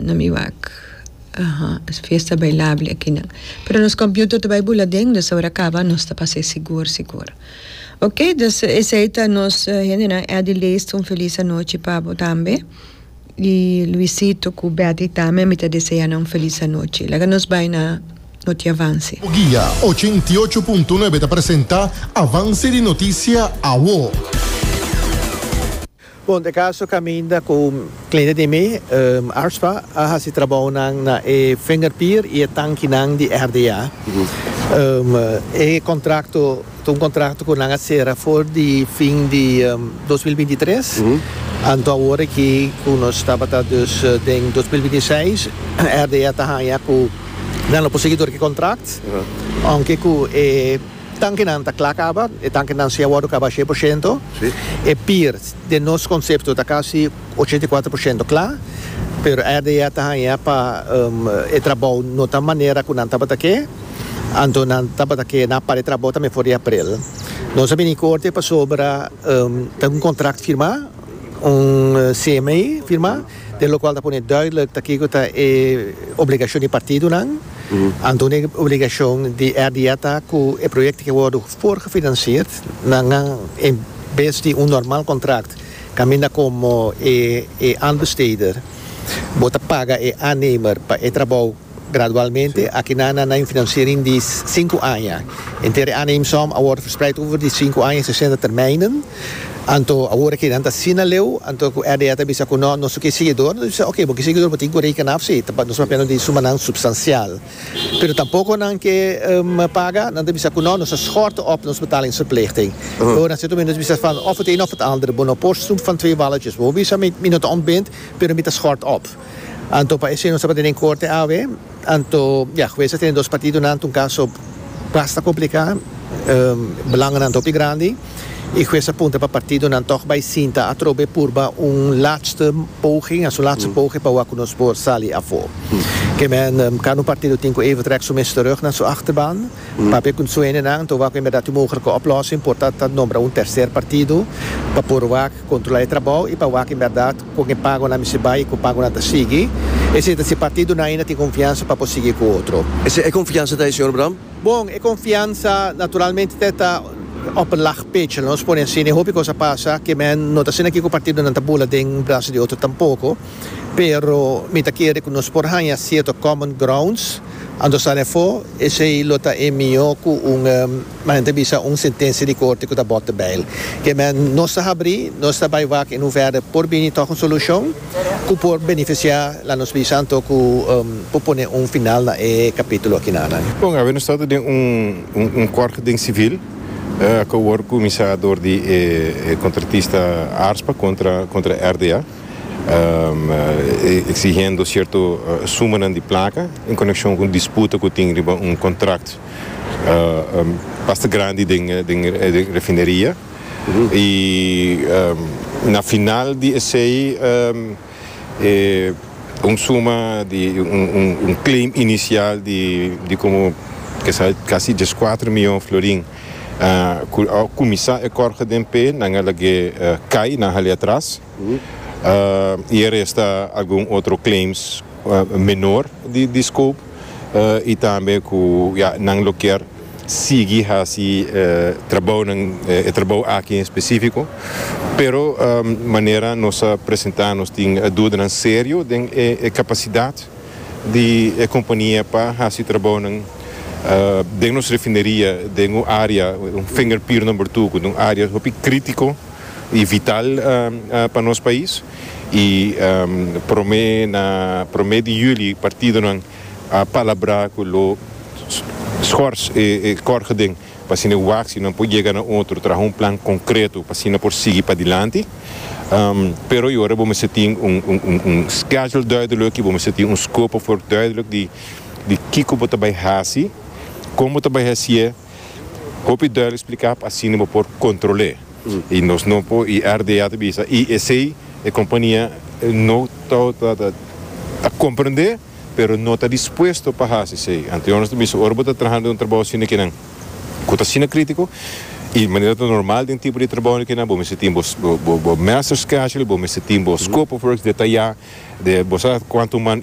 Na mi wak. Aha. Es fiesta bailable akinan. Pero nos computer ta bai bula den, dus ora caba nos ta pas'e sigur sigur. Ok, dus esey ta nos hendenan. Eddy Leest un feliz anochi pa bo tambe. Y Luisito cu Betty tambe mi ta desea nan un feliz anochi. Laga nos bai na Noti Avance. Bugia ochenta i ocho punto nuebe ta presenta Avance di Noticia Awo. Bon, e kaso kaminda ku kliente di mi, Arspa a hasi trabounan na e fingerpier i e tankinan di RDA. E kontrakto ta un kontrakto ku nan a sera for di fin di dos mil binti tres, anto awor aki ku nos tabata dus den dos mil binti seis, RDA ta haña ku nan lo por sigui tur ku e kontrakt, ounke ku e. Tankinan ta kla kaba, e tankinan si a wòrdu kaba shei por shento. E pir, den nos konsepto ta kasi ochenta i kuater por shento kla, pero RDA ta haña pa e trabou no ta manera ku nan tabata ke, anto nan tabata ke nan a para e trabou tambe for di aprel. Nos a bini korte pasobra ta un kontrakt firmá, un CMI firmá. Den lokual ta pone duidelijk ta kiko ta e obligashon di partidonan. Anto un obligashon di RDA ta ku e proyekto ke wòrdu voorgefinansierd na ngan en bes di un normal kontrakt kaminda komo e aanbesteder bo ta paga e aannemer pa e trabou Gradualmente, akinan nan na infinanciering di sinku aña. Henter e aanneemsom a worde verspreid over di sinku aña i sesenta termijnen. Anto awor akinan ta asina leu, anto ku RDA ta bisa ku no, nos no kier seguidor, nos bisa oke, bo kier seguidor bo tin ku reken af si, ta nos papia no tin sumanan supstancial. Pero tampoko nan ke paga, nan ta bisa ku no, nos ta schorten op nos betalingsverplichting. Bo na cierto momento nos bisa van of het een of het ander, bo no por snoep van twee walletjes. Bo bisa mi, mi no ta ontbind, pero mi ta schort op. Anto pa esei nos tabata den korte awe. Anto, ya, hues ta tene dos partidonan, ta un kaso basta kompliká. Belanganan ta hopi grandi i hues a punta pa partidonan tòg bai sinta atrobe purba un laatste poging, asu laatste poge, pa wak ku nos por sali afó. Ke men, kada un partido tin ku even trèk su mes terug na su achterban, papia ku sueñonan. Anto wak bemberdat e mogelike oplòsing por ta ta nombra un terser partido pa por wak kontrolá e trabou i pa wak bemberdat. Con e pagonan mi si bay y cu pagonan ta sigui. Esey ta si partido nan ainda tin confiansa pa por sigui cu otro. Esey e confiansa ta e Señor Bram? Bon, e confiansa naturalmente te ta op een laag pitje, lo nos pone así. N'e hopi cos a pasa que men no ta asina aquí cu partido nan ta bula den brazo di otro tampoco. Pero mi ta kere cu nos por haya cierto common grounds anto sa lefo. Esey lo ta e miho cu un. Maña ta bisa un sentencia di corte cu ta bota bail. Kei mea nos ta habri, nos ta bay wak y nun verder por bini toch un solucion cu por beneficia la nos bisa anto cu por pone un final na e capitulo aki nanan. Bon, awe nos ta ta den un corte den civil cu a wor cuminsa door di e contratista Arspa contra RDA exigendo cierto sumanan di placa en conexion cu un disputa cu tin riba un contract. pasta grandi den refineria y na final di esey un suma di un claim inicial di como casi diescuatro miyon florin cu a cuminsa e corge den pe nan a lag'e cay nan hali atras y e resta algun otro claims menor di scope. y tambe cu ya nan lo kier sigui haci trabounan e trabou aki en specifico pero manera nos a presenta nos tin dudanan serio den e capacidad di e compania pa haci trabounan den nos refineria den un area un finger pier number two cu ta un area hopi critico y vital pa nos pais. y prome na prome di juli partidonan a palabra cu lo schors e corgeden pa asina e waccionan por yega na otro traha un plan concreto pa asina por sigui padilanti pero y ora bo mester tin un schedule duidelijk y bo mester tin un scope of work duidelijk di kico bo ta bay haci con bo ta bay hacié. Hopi duel explica pa asina bo por controle y nos no por y RDA ta bisa y esey e compania no ta ta comprende pero no ta dispuesto pa haci esey anto yo nos ta bisa ora bo ta traha den un trabao asina ki nan cu ta asina critico y manera ta normal den tipo di trabao di kinan bo mester tin bo bo bo master schedule bo mester tin bo scope of works detaya de bo sa cuanto man.